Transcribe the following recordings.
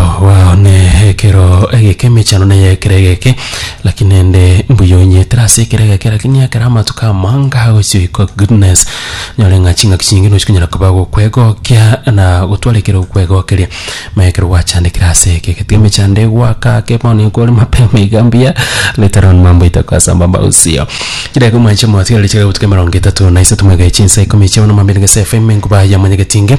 Okwao nekero egeke emechando neye ekero egeke, lakini naende mbuya onyietera ase ekero egeke, lakini ekero amatuko amanga agochia oikwa goodness, nyore ng'a ching'aki chinge nochi konyara koba gokwegokia na gotwara ekero okwegokeria. Maya ekero gwachandekire ase egeke, tiga emechando egwake ake bono ekore mapema iga mbuya, later on mambo itakuwa sambamba usio. Chidakika omwanche motigarete chire gotuka emerongo etato na isato moekeire chinsa ikomi chia bono mambia nigo ase FM enkuba ya monyegeti inge.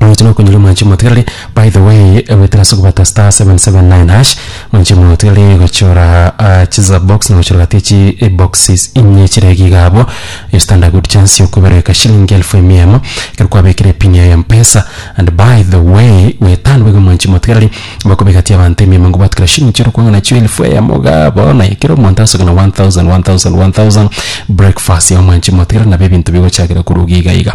Oyote nokonyora mwanchi omotigareri by the way egwetera ase ogobata star 779 hash mwanchi omotigareri gochora ah, chiza box na gochora gati echi eh, boxes inye chire iga iga abo you stand a good chance yokobereka shilingi elfu emia emo ekero kwabekire pin ya mpesa and by the way gweta nigo iga mwanchi omotigareri bakobegatia abanto emia emo nigo batukera shilingi chiria okwang'a nachio elfu eyemo iga abo bono ekero omonto asoka na 1000 1000 1000 breakfast ya mwanchi omotigareri nabo ebinto bigochakera korwa iga iga iga.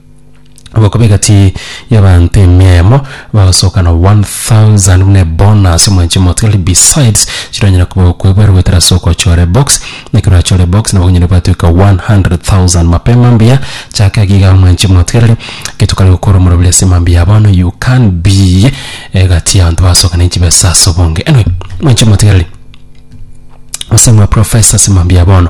Ogokoba egati y'abaanto emia eyemo bagosoka na 1000 buna ebonus omwanche omotiga ri besides chironyare koba okwebwera goetera ase ogochora ebox na ekero orachore ebox nabo onyare gwatweka 100,000 mapema mbuya chaka iga iga omwanchi omotigareri getokare gokora omoroberi ase mambia ya bono you can be egati y'abanto basoka ne chibesa ase obonge anyway omwanchi omotigareri gose mwa professor ase mambia ya bono.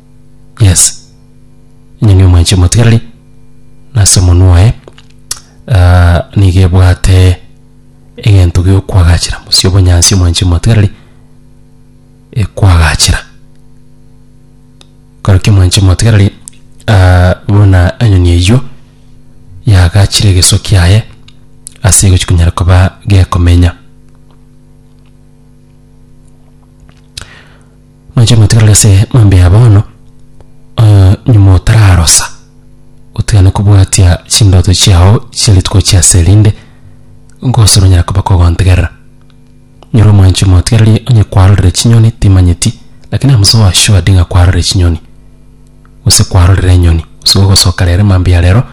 yes enyoni omwenche motigareri nase omonwa oye ah, nigo ebwate egento giokwagachera mosia obonyansi omwenche motigareri ekwagachera korokio omwenche motigareri ah, buna enyoni eywo yagachire egeso kiaye ase egochi konyara koba gekomenya. Mwanche motigarere ase maambia ya bono, eh, nyuma otararosa, otigane kobwatia chindoto chiao chia rituko chia ase erinde nkose ronyare koba kogontegerera. Nyoro omwanche motigarerie onye kwarorire chinyoni timanyeti, lakini amuse owe assured ng'a kwarorire chinyoni, gose kwarorire enyoni, gose gogosoka rero maambia ya rero,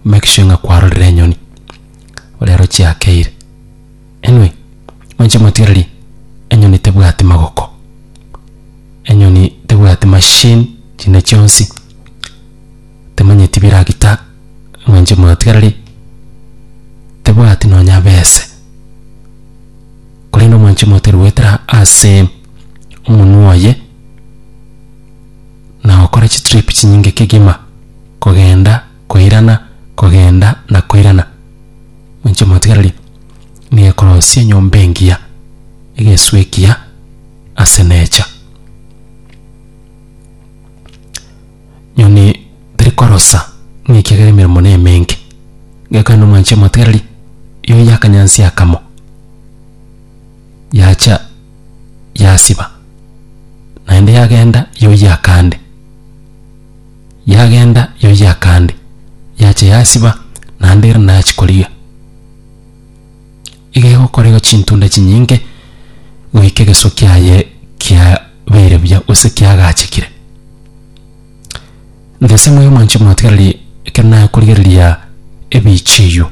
make sure ng'a kwarorire enyoni, rero chiakeire. Inwe inche motigererie, enyoni tebwati magoko, enyoni tebwati machine chinde chionsi, temanyeti biragita, inwe inche motigererie, tebwati nonya bese, korende omwanche motigererie goetera ase omonwe oye, na gokora chitrip chinyinge kegima kogenda. Koirana, kogenda, na koirana. Moinche motigarerie, nigo ekorosia enyomba engiya, egesu ekiya, ase necha. Nyoni teri korosa, ng'a ekiagera emeremo nemenge. Gekorende omoinche motigarerie, yoyia akanyansi akamo, yacha yasiba, naende yagenda yoyia akande. Yagenda yoyia kande, yacha yasiba, naende ere nachi korigia. Iga egokorerwa chintunda chinyinge goika egesuo kiaye kiabeire buya gose kiagachekire. Nthese moyo mwanche motigererie ekero nakorigereria ebiichi eyio.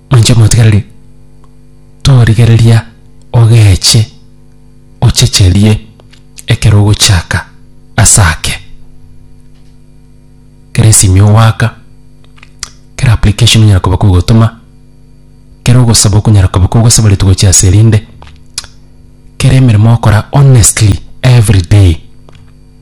Inche omotigareri torigereria ogeche ochecherie ekero ogochaka ase ake. Kera esimi ogoaka, kera application onyara koba kogotoma, kera ogosaba okonyara koba kogosaboretu gochia ase erinde, kera emeremo okora honestly everyday.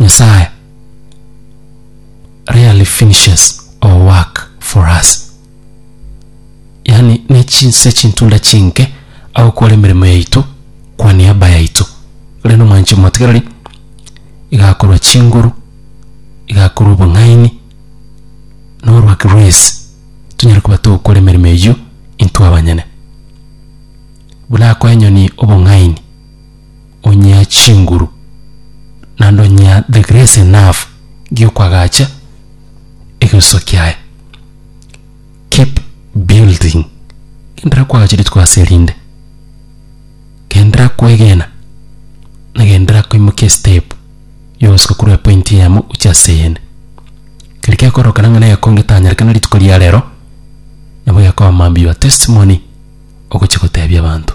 Nyasae rarely finishes our work for us, yaani ne chinse chintunda chinke agokora emeremo yaito kwa niaba yaito. Ore nomwanche omotigareri, igakorwa chinguru, igakorwa obong'aini, na orwaki rw'ense, tonyare koba togokora emeremo eyio intwe abanyene. Buna akoa enyoni obong'aini. onyea chinguru, naende onyea the grace enough giokoagacha egesuso kiaye. Keep building. Genderera koagacha rituko ase erinde. Genderera koegena, na genderera koimokia estep yogosuka korwa epoint eyemo gochia ase eyende. Keri gekorokana ng'a nere kongetanyerekana rituko ria rero, nabo gekoba mambia your testimony ogochia gotebia abanto.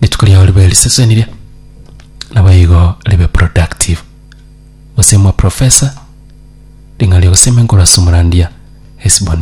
rituko riao ribe risesenirie nabo igo ribe productive gose mwa professor ring'ana ri'ogosemiankorwa ase omorandia Hesbon